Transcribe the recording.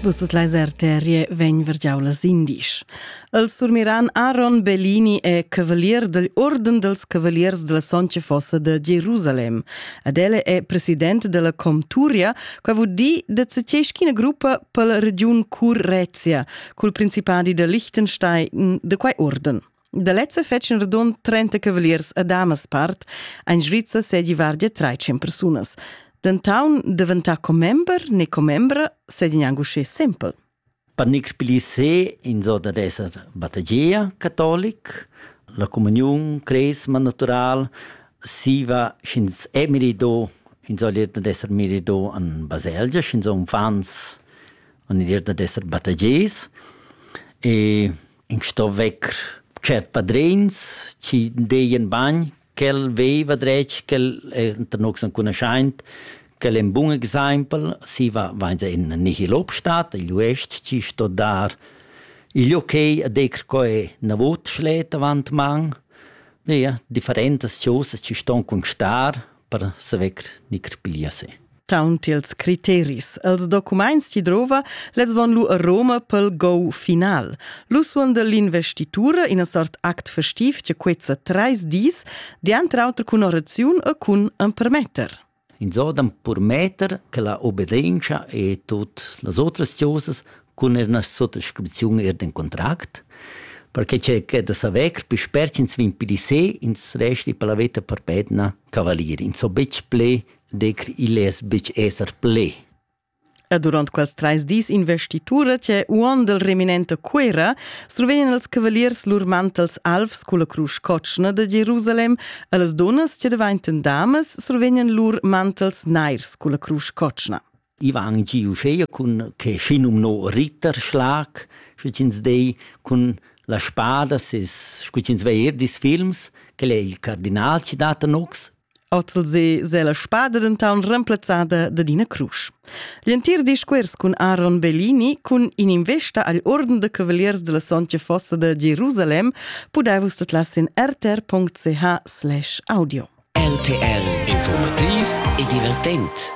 Vus tot leis arterie vegn vergiau las indisch. Els surmiran Aaron Bellini e cavalier del Orden dels Cavaliers della Soncia Fossa de Jerusalem. Ad elle è president della Comturia, qua vud di de zeceschina gruppa per la region Currezia, cul principadi de Liechtenstein de quai orden. Da lezza fetschen radund 30 cavaliers a damas part ein Svizza sedi vardia 13 persunas. Dentaun daventà commember ne commembra sedin angu sche simpel. Panic Plissé in zona d'esser battageia catolic, la comunion cresma natural, siva sch'ins è mirido, in soll irda d'esser mirido an baselgia, sch'ins on fans, on irda d'esser battages. E in sto vecker tschert padrins chi deien bagn ch'el veiva dretg ch'el enta nox ancunaschaint ch'el è ün bun exaimpel si va vainsa in nihil obstat igl uest chi sto dar igl okay a decker co è na vot schlet avant man ja differentas chosas chi ston constar per saver nicr piglia se. Taunt ils criteris, els documaints chi drova, lez von lu a Roma pel go final. Lu suon dell'investitura in a sort act festiv che quezza treis dis, diantr auter cun oraziun e cun empermetter. Insordam permetter che la obbedienza e tot las otras cosas cun er una sottoscripzione er den contract, perché c'è che da saver più spert ins vin pli se, ins resti per la veta per petna cavalier, ins so betg ple, dec il es betg esser ple. E durant quels treis dis investitura che uon del reminente Cuera survegnan els cavaliers lur mantels alvs culla crusch cotschna de Jerusalem e les donas che devainten damas survegnan lur mantels nairs culla crusch cotschna. I va anc giu uschea cun que schinumno Ritterschlag, scu ch'ins dei, cun las spadas es, scu ch'ins va eir dis films, quel è il cardinal chi dat a nocs. Ozelse s'è la spada dentant remplazzada dad ina crusch. L'entir discuors cun Aaron Bellini cun in'investa agl Orden de Cavaliers della Sontga Fossa de Jerusalem pudai vus tetlas in rtr.ch/audio. RTL Informativ e divertent